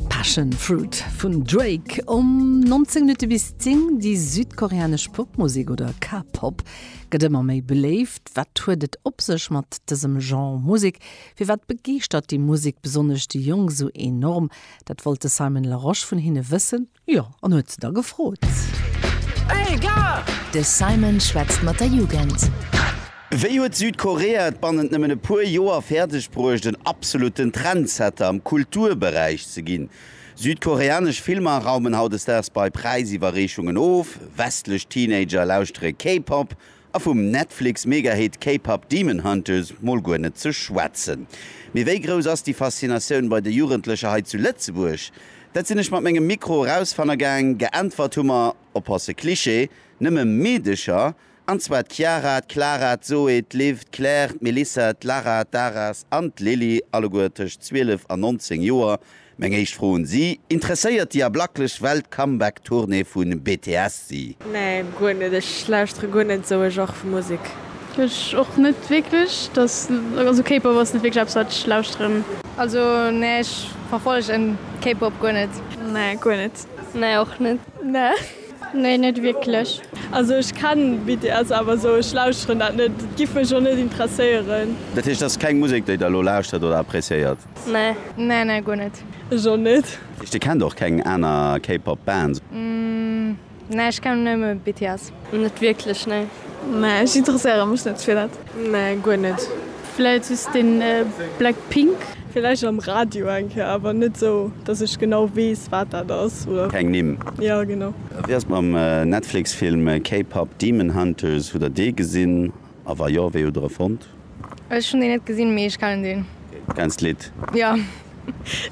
Passion Fruit vun Drake um 19 Minutte bis 10. Déi südkoreanesch Popmusek oder K-Pop gëtt ëmmer méi beléift. Wat huet et op sech mat dësem Genre Musek? Firwat begeeschtert déi Musek besonnesch déi Jonk esou enorm? Dat wollt de Simon Larosche vun hinne wëssen. Jo, an huet se da gefrot. Hey gars! De Simon schwätzt mat der Jugend. Wéi huet Südkorea et bannent nëmmen e puer Joer fäerdeg bruecht, en absolutten Trendsetter am Kulturberäich ze ginn? Südkoreanesch Filmer raumen hautdesdaags bei Präisiwwerreechungen of, westlech Teenager lauschtere K-Pop A vum Netflix-Megahit K-Pop Demon Hunters mol guer net ze schwätzen. Mee wéi grouss ass déi Faszinatioun bei de Jugendlecher hei zu Lëtzebuerg? Dat sinn ech mat mengem Mikro erausfanne gaang. Geäntwert hu mer, oppasse Cliché, nëmme Meedecher, an zwar d'Chiara, d'Clara, d'Zoé, d'Liv, d'Claire, d'Melissa, d'Lara, d'Aras an d'Lilly, alleguer tëscht 12 an 19 Joer. Meng éischt Fro un si, Interesséiert déi ablaklech Welt d'Comeback Tournée vu BTS si? Nee guer net, ech lauschtere guer net esou e Genre vu Musek. Ech och net wierklech, dass also K-Pop ass net wierklech eppes wat ech lauschteren. Also nee ech verfollegen K-Pop guer net. Nee guer net. Nee och net. Nee. Nee net wierklech. Also ech kennen BTS awer esou ech lauschteren dat net, et giff mech och net interesséieren. Dat heescht et ass keng Musek déi der elo lauschtert oder appreciéiert? Nee. Nee nee guer net. Ech och net. Dir kennt och keng aner K-Pop Bands? Nee ech kennen nëmme BTS. Net wierklech nee. Nee ech interesséiere mech net fir dat. Nee guer net. Vläit just den Blackpink. Vläicht am Radio eng Kéier awer net sou dass ech genau weess wat dat ass oder. Keng Nimm? Jo genau. Wéi ass et mam Netflix Film K-Pop Demon Hunters, hutt der dee gesinn? A wa jo, wéi hutt der e fonnt? Ech hunn deen net gesinn, mee ech kennen deen. Du kenns d'Lidd? Jo.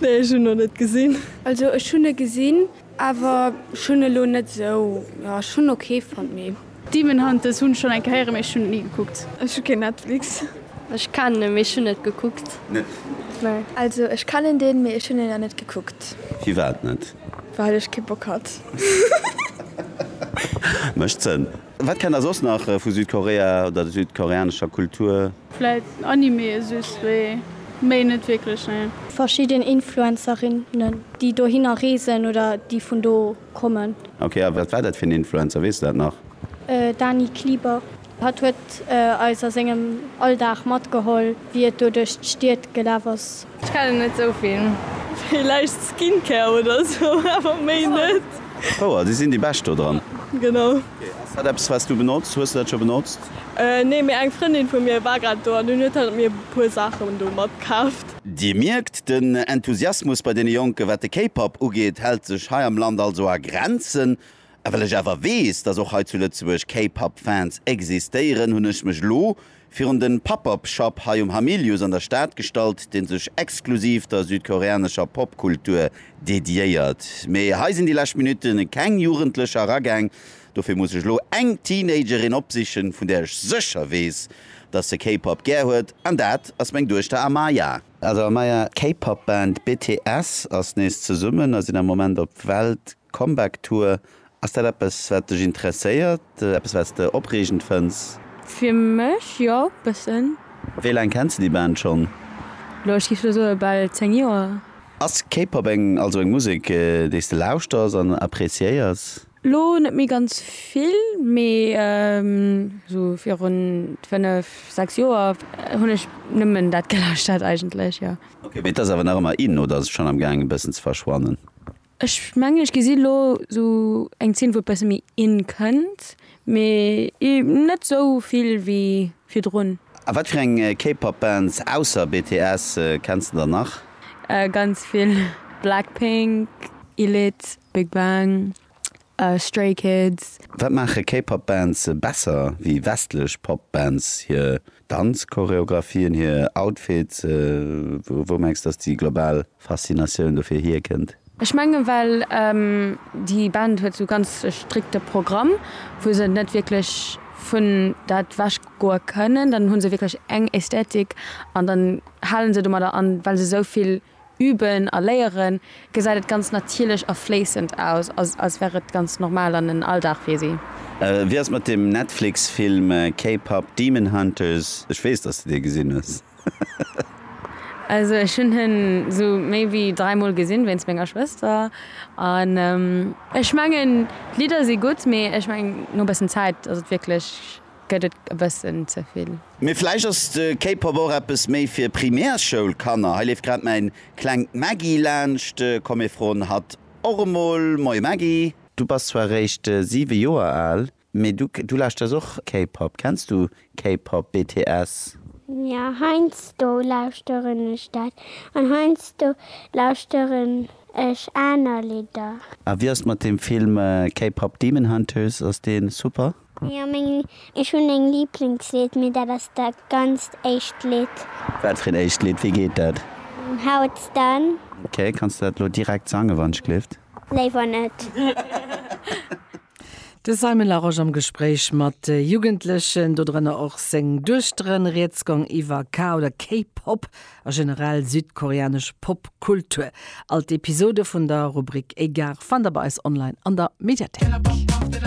Nee, ech hunn en nach net gesinn. Also ech hunn e gesinn, awer ech hunn e lo net esou, jo ech hunn en ok fonnt, mee. Demon Hunters hunn ech schonn eng Kéier héieren, mee ech hunn et ni gekuckt. Ech hu keen Netflix. Ech kennen en, mee ech hunn net gekuckt. Net? Nee. Also ech kennen deen, mee ech hunn en nach net gekuckt. Firwat net? Well ech kee Bock hat. Mécht Sënn. Wat kennt der soss nach vu Südkorea oder der südkoreanescher Kultur? Vläit Anime e soss wéi, méi net wierklech, nee. Verschidden Influencerinnen, déi dohinner reesen oder déi vun do kommen. Ok, a wat war dat fir en Influencer, weess de dat nach? Dani Klieber. Hatt huet eis a sengem Alldag matgeholl, wéi et do duerch d'Stied gelaf ass. Ech kennen net sou vill. Villäicht Skincare oder sou, awer méi net. Fouer, si sinn déi bescht do dran. Genau. Ass dat eppes wats du benotz? Hues du dat scho benotzt? Nee, mee eng Frëndin vu mir war grad do an dunn huet hat mir puer Saachen do matkaaft. Dir mierkt, den Enthusiasmus bei deene Jonken, wat de K-Pop ugeet, hält sech hei am Land also a Grenzen. A well ech awer weess, dass och hei zu Lëtzebuerg K-Pop Fans existéieren, hunn ech mech elo virun den Pop-Up Shop hei um Hamilius an der Stad gestallt, deen sech exklusiv der südkoreanescher Popkultur dediéiert. Mee hei sinn déi lescht Minutte keng Jugendlecher eragaang, dofir muss ech elo eng Teenagerin opsichen, vun där ech sécher weess, dass se K-Pop gär huet, an dat ass meng Duechter Amaya. Also Amaya, d'K-Pop Band BTS ass nees zesummen a sinn am Moment op Welt Comeback Tour, Ass dat eppes wat dech interesséiert? Eppes wat s de opreegend fënns? Fir mech jo, bëssen. Wéi laang kenns de déi Band schonn? Elo, ech géif elo soe bal 10 Joer. Ass K-Pop eng, also eng Musek déi s de lauschters an appreciéiers? Elo net méi ganz vill, mee esou virun 5, 6 Joer hunn ech nëmmen dat gelauschtert eigentlech, jo. Ok, mee et ass awer nach ëmmer in oder ass et schonn am gaang e bëssen ze verschwannen? Ech mengen ech gesi lo sou eng Zeen wou e besse méi in kënnt, mee net sou vill wéi virdrun. A wat fir eng K-Pop Bands ausser BTS kenns de dann nach? Ganz vill, Blackpink, Elite, Big Bang, Stray Kids. Wat maache K-Pop Bands besser wéi westlech Pop Bands? Hir Danzchoreographien, hir Outfits? Wou mengs dass déi global Faszinatioun dofir hier kënnt? Ech mengen well déi Band huet sou ganz e strikte Programm wou se net wierklech vun dat wech goe kënnen. Dann hunn se wierklech eng Ästhetik an dann halen se domadder an well se souvill üben a léieren, gesäit et ganz natierlech a fléissend aus, als wär et ganz normal an en Alldag fir si. Wéi ass et mat dem Netflix-Film K-Pop Demon Hunters? Ech weess, dass du dee gesinn hues. Also ech hunn en esou méi wéi dräi Mol gesinn, wéinst menger Schwëster. An ech mengen d'Lidder si gutt, mee ech mengen no e bëssen Zäit ass et wierklech. Gëtt et e bëssen ze vill? Mee vläicht ass de K-Pop och eppes méi fir Primärschoulkanner. Hei leeft grad mäin klengt Maggie laanscht. Komm mir froen hatt och emol. Moie Maggie. Du bass zwar réischt 7 Joer al, mee du lauschters och K-Pop. Kenns du K-Pop, BTS? Jo, heiansdo lauschteren ech dat. An heiansdo lauschteren ech aner Lidder. A wéi ass et mat dem Film K-Pop Demon Hunters? Ass dee super? Jo meng ech hun eng Lieblingslied mee dat ass dat ganzt éischt Lied. Wat fir een éischt Lied? Wéi geet dat? How it's done. Ok, kanns de dat elo direkt sangen wann ech gleeft? Léiwer net. De Simon Larosche am Gespréich mat Jugendlechen, do drënner och seng Duechteren. Rieds gong iwwer K oder K-Pop a generell südkoreanesch Popkultur. All d'Episode vun der Rubrik Egare fannt der bei eis online an der Mediathéik.